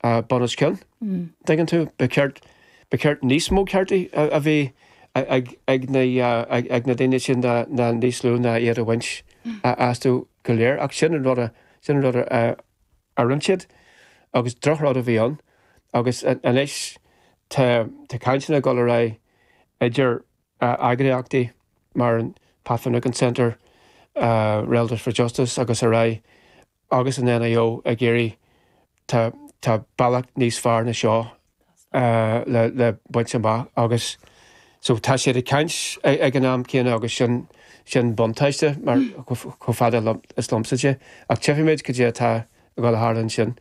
a bunoscionn, an dtuigeann tú? Ba cheart, ba cheart níos mó cearta a bheith ag, ag na, ag na daoine sin ná, ná níos lú ná iad a bhaint astu go léir. Ach sin an rud a, sin an rud a, a, a rinne siad agus drochrud a bhí ann agus anois tá, tá cainteanna ag dul ar aghaidh idir eagraíochtaí mar an Pat Finucane Centre, Relatives for Justice agus ar aghaidh. Agus an NIO ag iarraidh tá, tá bealach níos fearr na seo le le baint amach agus so tá siad ag caint ag an am céanna agus sin sin buntáiste mar chomh fada is liomsa de ach tchífidh muid caidé atá ag dul a tharlú ansin.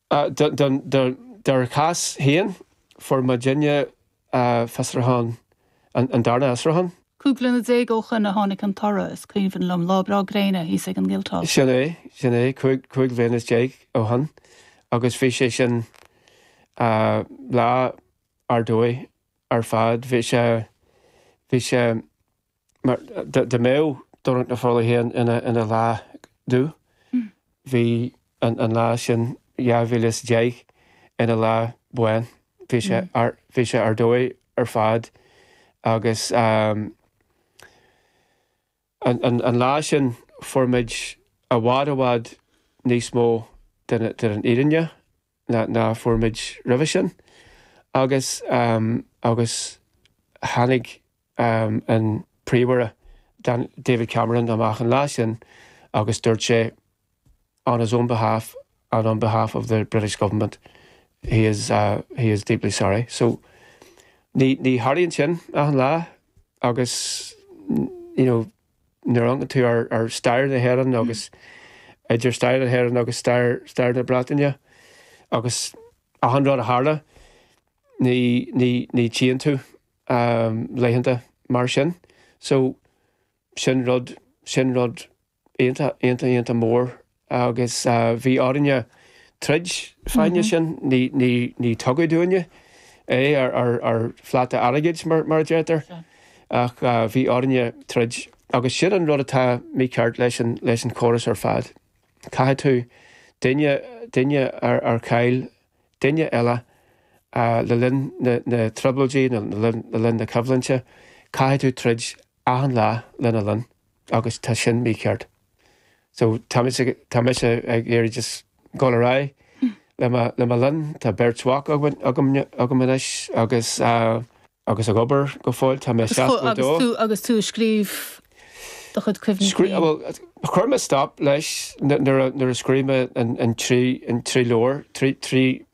Dár gcás féin, fuair muidinne fiosrúchán, an darna fhiosrúchán. Cúig bliana déag ó shoin a tháinig an toradh, is cuimhin liom, lá breá gréine thíos ag an Guildhall. Sin é, sin é, cúig bhliana is déag ó shoin, agus bhí sé sin lá ar dóigh ar fad. Bhí sé, bhí sé, mar dá mbeadh Domhnach na Fola féin ina lá dubh, bhí an lá sin 2010 ina lá bán. Bhí sé ar dóigh ar fad agus an lá sin fuair muid i bhfad i bhfad níos mó den fhírinne ná a fuair muid roimhe sin agus agus tháinig an Príomhaire David Cameron amach an lá sin agus dúirt sé on his own behalf and on behalf of the British Government he is he is deeply sorry. So ní tharlaíonn sin achan lá agus you know. nuair a amharcann tú ar stair na hÉireann agus idir stair na hÉireann agus stair na Breataine agus achan rud a tharla, ní tchíonn tú laethanta mar sin. So, sin rud, sin rud iontach, iontach, iontach mór Agus bhí orainne troid fá choinne sin, ní tugadh dúinne é ar phláta airgid, mar a deirtear, ach bhí orainne troid. Agus sin an rud atá mícheart leis an chóras ar fad. Caithfidh tú duine ar chaill duine eile le linn na dtrioblóidí nó le linn na coimhlinte, caithfidh tú troid achan lá lena linn agus tá sin mícheart. So tá mise, tá mise ag iarraidh just dhul ar aghaidh le mo, le mo linn. Tá beirt mhac againn, agam, agam anois agus agus ag obair go fóill. Tá mé 62. Agus tú ag scríobh do chuid cuimhní féin? Scrí, bhuel, chuir mé stop leis nuair a, nuair a scríobh mé an, an trí, an trí leabhar, trí, trí,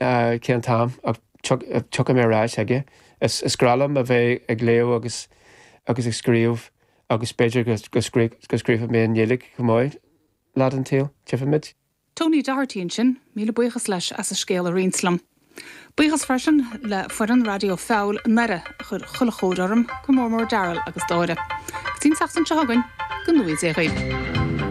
cén t-am ach tiocfaidh mé ar ais aige. Is breá liom a bheith ag léamh agus agus ag scríobh agus b'fhéidir go go scríobhfaidh mé i nGaeilge chomh maith lá den tsaol, tífimid. Tony Doherty ansin, míle buíochas leis as a scéal a roinnt liom. Buíochas freisin le foireann Raidió Feabhail i nDoire a chuir chuile chóir orm, go mór mór Darryl agus Dáire. Go dtí an tseachtain seo chugainn, go dté sibh slán.